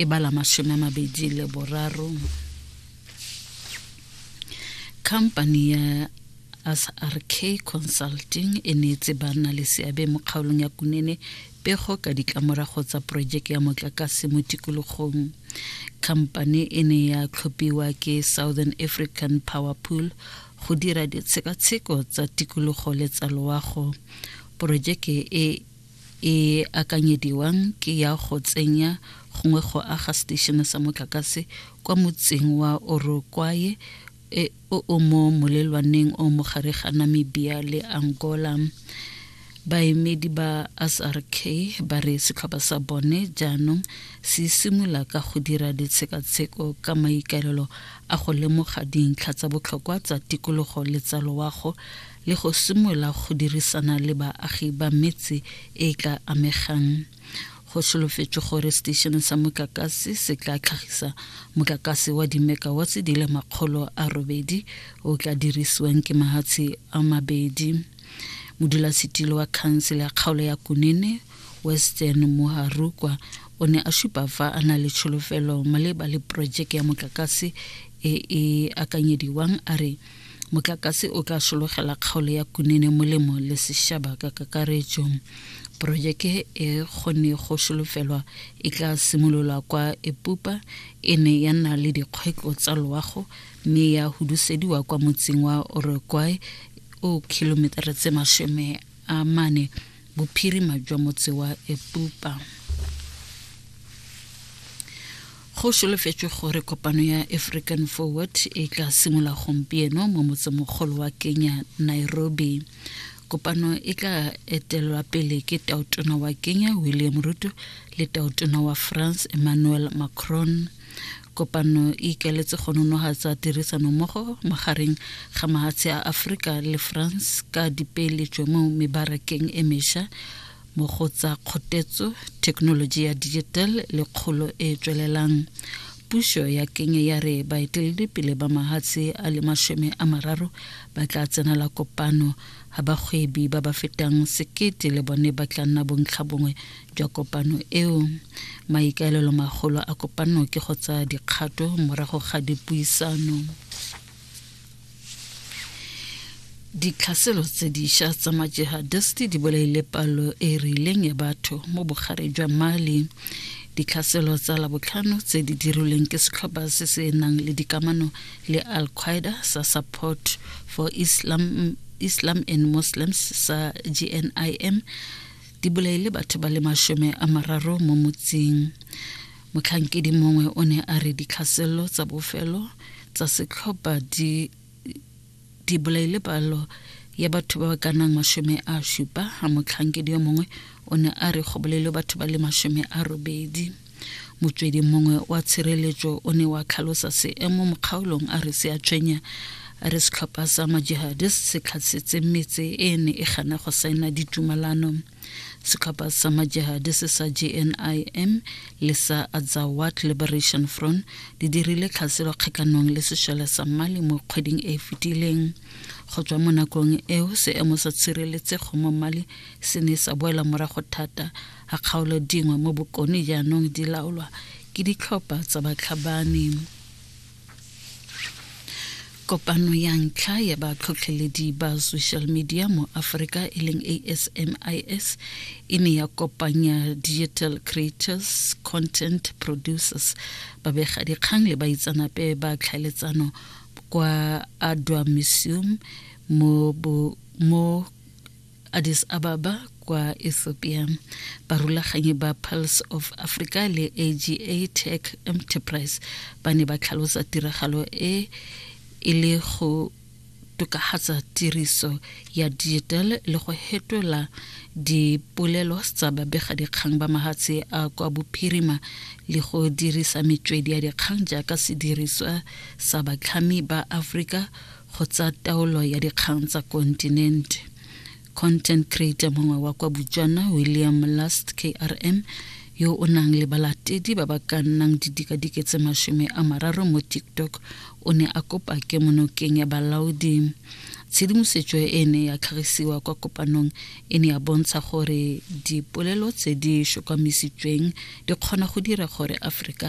e ba la masome a mabedi le boraro company ya srk consulting e neetse banna le seabe mo kgaolong ya kunene pego ka ditlamorago tsa porojeke ya motlakase mo tikologong khamphane e ne ya tlhophiwa ke southern african power pool go dira ditshekatsheko tsa tikologo le tsa loago porojeke e e akanyediwang ke ya go tsenya gongwe go aga seteišene sa motlakase kwa motseng wa orokwaye e o o mo molelwaneng o mogare ga namibia le angola baemedi ba srk ba re setlhopha sa bone jaanong se simolola ka go dira ditshekatsheko ka maikaelelo a go lemoga dintlha tsa botlhokwa tsa tikologo le tsa loago le go simolola go dirisana le baagi ba metse e e tla amegang go solofetswe gore seteishene sa motlakase se tla tlhagisa motlakase wa dimekawatse di le makgolo a robedi o tla dirisiwang ke mahatshe a mabedi modulasetilo wa khansele ya kgaolo ya kunene western moharukwa o ne a supa fa a na le tsholofelo maleba le porojeke ya motlakase e e akanyediwang a re Motlakase o tla sologela kgaolo ya Kunene molemo le sešaba ka kakaretso. Porojeke e kgone go solofelwa e tla simololwa kwa Epupa e ne ya nna le dikgwetlo tsa loago mme ya hudusediwa kwa motseng wa Orokwai o kilometara tse masome a mane bophirima jwa motse wa epupa go solofetswe gore kopano ya african forward e tla simolola gompieno mo motsemogolo wa kenya nairobi kopano e tla etelelwa pele ke taotona wa kenya william ruto le taotona wa france emmanuel macron kopano e ikaletse go nonogatsa tirisanommogo magareng ga mahatshe a aforika le france ka dipeeletšo mo mebarakeng e mesha mo go tsa kgotetso thekenoloji ya digital le kgolo e e tswelelang puso ya kenya ya re baeteledipele ba mahatshe a le masome a mararo ba tla tsenela kopano ga bagwebi ba ba fetang sekete le bone ba tla nna bontlha bongwe jwa kopano eo. Maikaelelo magolo a kopano ke go tsaya dikgato morago ga dipuisano. ditlhaselo tse diša tsa majihadisti di bolaile palo e e rileng ya batho mo bogare jwa mali ditlhaselo tsa labotlhano tse di dirilweng ke setlhopha se se nang le dikamano le al qaeda sa support for islam islam and muslims sa gnim di bolaile batho ba le masome a mararo mo motseng motlhankedi mongwe o ne a re ditlhaselelo tsa bofelo tsa setlhopha di di bolaile palo ya batho ba ba ka nang masome a supa ga motlhankedi yo mongwe o ne a re go bolailwe batho ba le masome a robedi motswedi mongwe wa tshireletso o ne wa tlhalosa seemo mo kgaolong a re se a tshwenya a re setlhopha sa majihadis se tlhatsetse metse e ne e gana go saena ditumalano setlhopha sa majihadis sa jnim le sa azawat liberation front di dirile tlhaselo kgatlhanong le sešole sa mali mo kgweding e e fetileng go tswa mo nakong eo seemo sa tshireletsego mo mali se ne sa boela morago thata a kgaolo dingwe mo bokone jaanong di laolwa ke ditlhopha tsa batlhabani kopano ya ntlha ya batlhotlheledi ba social media mo aforika e leng asmis e ne ya kopanya digital creators content producers babegadikgang le baitsanape ba tlhaeletsano kwa adwa museum mo, mo Addis Ababa kwa Ethiopia. Barulaganyi ba Pulse of Africa le AGA Tech Enterprise ba ne ba tlhalosa tiragalo e e le go tokagatsa tiriso ya digital le go hetola dipolelo tsa babegadikgang ba mahatshe a kwa bophirima le go dirisa metswedi ya dikgang jaaka sediriswa sa batlhami ba Afrika go tsa taolo ya dikgang tsa kontinente content creator mongwe wa kwa botswana william last krm yo o nang le balatedi ba ba ka nnang didikadike tse masome a mararo mo tiktok o ne a kopa ke monokeng ya balaodi tshedimosetso e ne ya tlhagisiwa kwa kopanong e ne ya bontsha gore dipolelo tse di shokwamisitsweng di kgona go dira gore aforika